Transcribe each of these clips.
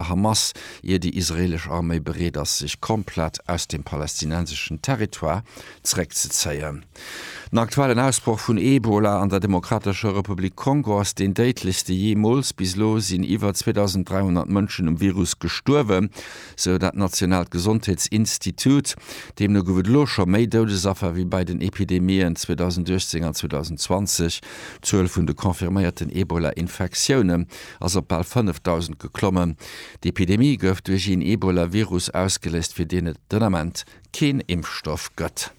Hamas, ier déi israeelesch Arméi bereet ass, sech komplett aus dem palästinenseschen Territoire zeréckzezéien. Den aktuellen Ausbroch vun Ebola an der Demokratescher Republik Kongo ass deen déidlechste jeemools. Bis elo sinn iwwer 2.300 Mënschen um Virus gestuerwen, sou dat nationaalt Gesondheetsinstitut. Deemno gouf et elo scho méi Doudesaffer wéi bei den Epidemien 2018 an 2020. D'Zuel vun de confirméierten Ebola-Infektioune ass op bal 5.000 geklommen. D'Epidemie gouf duerch een Ebola-Virus ausgeléist, fir deen et den Ament keen Impfstoff gëtt.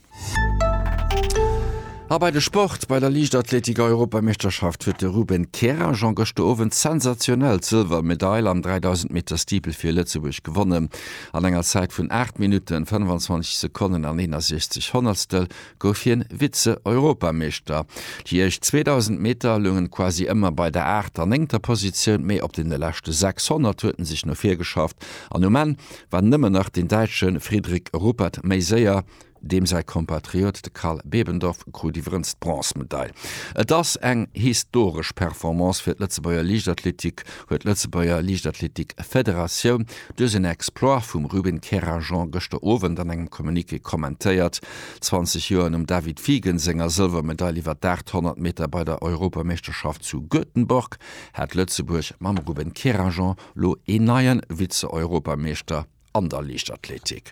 A bei de Sport, Bei der Liichtathletik-Europameeschterschaft huet de Ruben Kerajan gëschter Owend sensationell d'Sëlwermedail am 3.000 Meter Steeple fir Lëtzebuerg gewonnen. An enger Zäit vun 8 Minutten, 25 Sekonnen an 61 Honnertstel gouf hien Vize-Europameeschter. Déi éischt 2.000 Meter loungen quasi ëmmer bei der aachter, néngter Positioun, mee op den leschte 600 huet en sech no vir geschafft an um Enn war nëmmen nach den Däitschen Friederik Ruppert méi séier. Deem säi Kompatriot, de Karl Bebendorf, krut iwwerens d'Bronzmedail. Et ass eng historesch Performance fir d'Lëtzebuerger Liichtathletik, huet d'Lëtzebuerger Liichtathletik Federatioun duerch en Exploit vum Rubin Kerajan gëschter Owend an engem Communiqué kommentéiert. 20 Joer nom David Feagans senger Sëlwermedail iwwer d'Aachthonnert Meter bei der Europameeschterschaft zu Göteborg hat Lëtzebuerg mam Ruben Kerajan lo een neie Vize-Europameeschter an der Liichtathletik.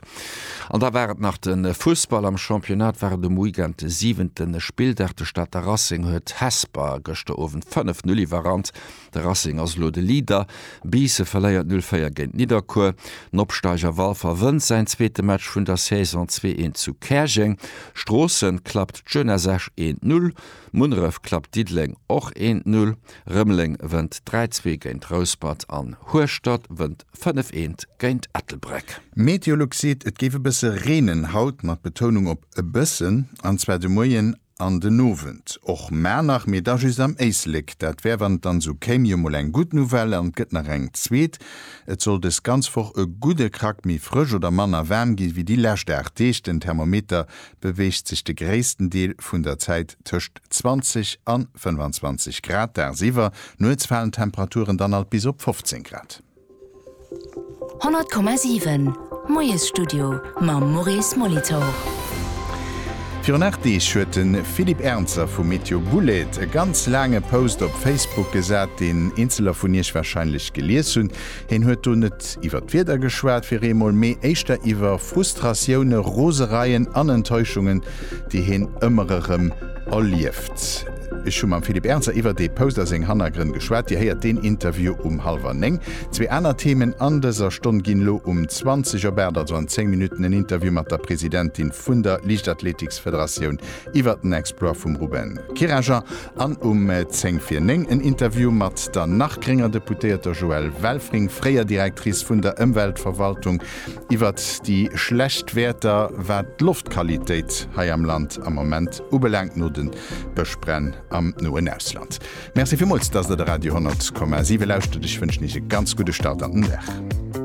An da war et nach de Fussball. Am Championnat war et um Weekend de siwente Spilldag. De Stater Racing huet Hesper gëschter Owend 5, 0 iwwerrannt. De Racing ass elo de Leader. Biisse verléiert 0-4 géint Nidderkuer. Den Opsteiger Walfer wënnt säin zweete Match vun der Saison 2-1 zu Käerjeng. Stroossen klappt d'Jeunesse Esch 1-0. Munneref klappt Diddeleng och 1-0. Rëmeleng wënnt 3-2 géint Rouspert an Hueschtert wënnt 5-1 géint Ettelbréck. Meteolux seet, et géif e bësse reenen haut, mat Betounung op e bëssen, an zwar de Moien An den Owend och maer nach, mee da just am Éislek. Dat wär, wann et dann esou kéim, jo mol eng gutt Nouvelle, an et gëtt nach eng zweet, Et soll dës ganz Woch e gudde Krack méi frësch oder manner waarm gi wéi déi lescht 8 Deeg. Den Thermometer beweegt sech de gréissten Deel vun der Zäit tëscht 20 an 25 Grad dagsiwwer. Nuets falen d'Temperaturen dann alt bis op 15 Grad. 100,7 Moiesstudio mam Maurice Molitor. Virun 8 Deeg huet de Philippe Ernzer vu Météo Bouled e ganz laange Post op Facebook gesat, deen eenzeler vun iech warscheinlech gelies hunn. Hien huet do net iwwer d'Wieder geschwat, fir eemol, mee éischter iwwer Frustratioune, Rosereien an Enttäuschungen, déi hien ëmmer erëm erlieft. Ech hu mam Philippe Ernzer iwwer dee Post a seng Hannergrënn geschwat. Dir héiert deen Interview um hallwer néng. Zwee aner Themen an dëser Stonn ginn elo um 20 op 8, also an 10 Minutten, en Interview mat der Presidentin vun der Liichtathletiksfederatioun iwwer den Exploit vum Ruben Kirager an um 10 vir 9 en Interview mat der nach grénger Deputéierter Joëlle Welfring, fréier Directrice vun der Ëmweltverwaltung, iwwer déi schlecht Wäerter, wat d'Loftqualitéit hei am Land am Moment ubelaangt no de Bëschbränn am noen Ausland. Merci villmools, dass der de Radio 10,7 lauschtert. Ech wënschen Iech e ganz gudde Start an den Dag.